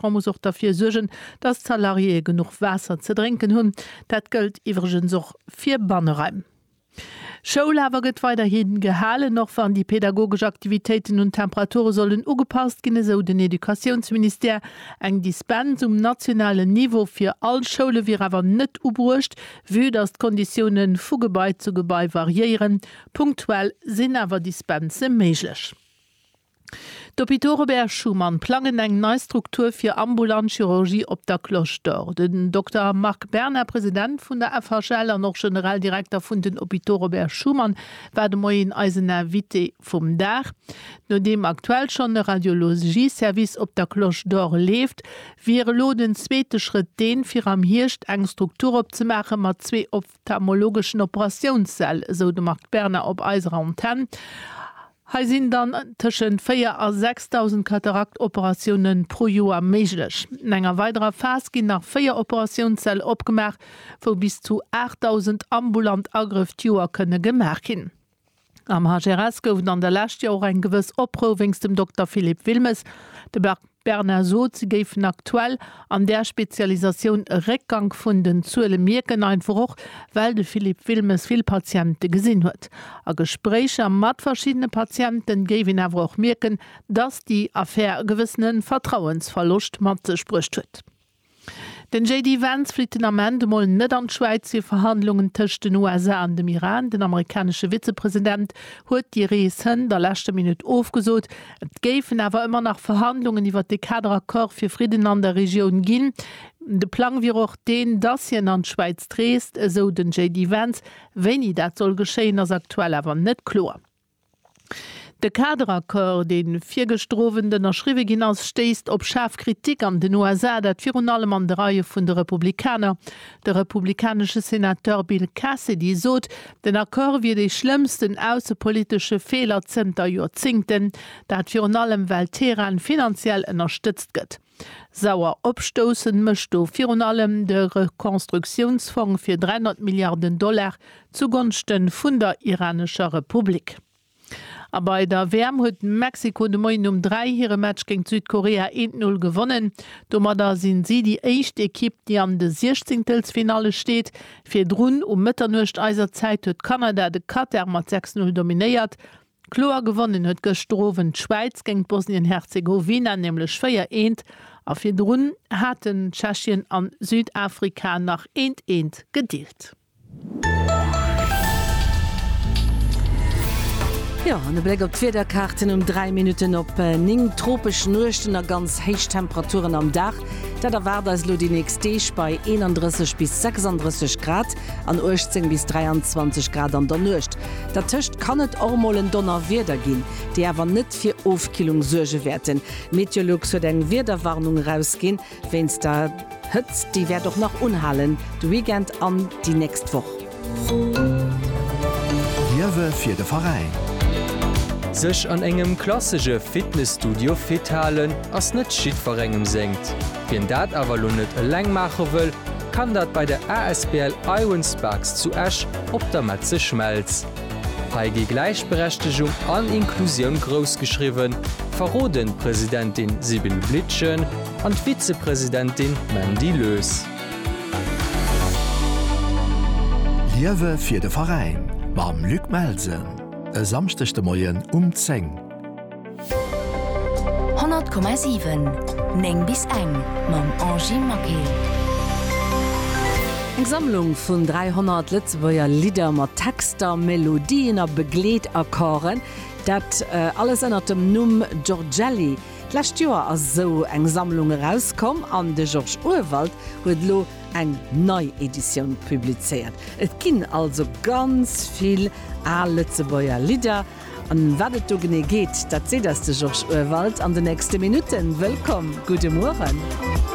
D'Gouvernement muss och derfir suergen, datt d'Salariéeë genuch Waasser ze drénken hunn. Dat gëllt iwwregens och fir Banneraim. Schoul awer gëtt weiderhi gehalen, och wann déi pedagogesch Aktivitéiten un d'Temperature sollen ugepasst ginn, esou den Educatiounsministère. Eng Dispens um nationalen Niveau fir all Schoule wier awer net ubruecht, vue datt d'Konditioune vu Gebai zu Gebai variéieren. Punktuell sinn awer Dispense méiglech. D'Hôpitaux Robert Schuman plangen eng nei Struktur fir ambulant Chirurgie op der Cloche d'Or. Den Dokter Marc Berna, President vun der FHL an och generell Direkter vun den Hôpitaux Robert Schuman, war de Moien eisen Invité vum Dag. Nodeem aktuell schonn e Radiologie-Service op der Cloche d'Or leeft, wier elo den zweete Schrëtt deen, fir am Hierscht eng Struktur opzemaache mat zwee D'phthalmologeschen Operatiounssäll, esou de Marc Berna op eiser Antenn. Hei sinn dann tëschent 4 a 6.000 Katarakt-Operatioune pro Joer méiglech. An enger weiderer Phas ginn nach 4 Operatiounssäll opgemaach, wou bis zu 8.000 ambulant Agrëff d'Joer kënne gemaach ginn. Am HRS gouf et an der Lescht jo och eng gewëss Oprou wéinst dem Dokter Philippe Wilmes. De Marc Berna sot, se géifen aktuell an där Spezialisatioun e Réckgank vun den Zuele mierken, einfach och well de Philippe Wilmes vill Patiente gesinn huet. A Gespréicher mat verschiddene Patiente géif een awer och mierken, datt déi Affär e gewëssene Vertrauensverloscht mat sech bruecht huet. Den JD Vance flitt den Ament emol net an d'Schwäiz fir Verhandlungen tëscht den USA an dem Iran. Den amerikanesche Vizepresident huet déi Rees hënt a leschter Minutt ofgesot. Et géifen awer ëmmer nach Verhandlungen iwwert de Kader Accord fir Fridden an der Regioun ginn. De Plang wier och deen, dass hien an d'Schwäiz reest, esou den JD Vance. Wéini dat soll geschéien, ass aktuell awer net kloer. De Kaderaccord, dee virgëschter Owend ënnerschriwwe ginn ass, stéisst op schaarf Kritik an den USA, dat virun allem an de Reie vun de Republikaner. De republikanesche Senateur Bill Cassidy sot, den Accord wier dee schlëmmsten aussepolitesche Feeler zënter Joerzéngten. Dat virun allem, well Teheran finanziell ënnerstëtzt gëtt. Sauer opstoussend mécht do virun allem de Rekonstruktiounsfong fir 300 Milliarden Dollar zugonschte vun der iranescher Republik. A bei der WM huet Mexiko de Moien um 3 hire Match géint Südkorea eent Null gewonnen. Domadder sinn si déi éischt Ekipp, déi an de Siechzéngtelsfinalle steet. Virdrun um Mëtternuecht eiser Zäit huet Kanada de Katar mat 6 Null dominéiert. Kloer gewonnen huet gëschter Owend d'Schwäiz géint Bosnien-Herzegowina nämlech 4, eent a virdrun haten Tschechien a Südafrika nach eent, eent gedeelt. Jo, an e Bléck op d'Wiederkaarten um 3 Minutten op 9, tropesch Nuechten a ganz héich Temperaturen am Dag. Dat erwaart eis elo déi nächst Deeg bei 31 bis 36 Grad an 18 bis 23 Grad an der Nuecht. Dertëscht kann et och mol en Donnerwieder ginn, déi awer net fir Ofkillung suerge wäerten. Meteolux huet eng Wiederwarnung erausginn wéinst der Hëtzt, déi wäert och nach unhalen de Weekend an déi nächst Woch. Liewe fir de Veräin. Sech an engem klassege Fitnesstudio fit halen ass net jiddwerengem sengt. Wien dat awer elo net eleng maache wëll, kann dat bei der asbl Iron Sparks zu Esch op der Metze Schmelz. Hei gi Gläichberechtegung an Inklusioun grouss geschriwwen, verroden d'Presidentin Sibylle Blietgen an d'Vizepresidentin Mandy Lös. Liewe fir de Veräin mam Luc Melsen e Samschdeg de Moien um 10. 100,7, 9 bis eng mam Angie Maquet. Eng Sammlung vun 300 Lëtzebuerger Lidder mat Texter, Melodien a Begleetakkorden. Dat alles ënnert dem Numm Giorgelli D'lescht Joer ass esou eng Sammlung erauskomm an de Georges Urwald huet elo eng nei Editioun publizéiert. Et ginn also ganz vill al Lëtzebuerger Lidder. An wat et do genee geet, dat seet eis de Georges Urwald an de nächste Minutten. Wëllkomm, gudde Mueren.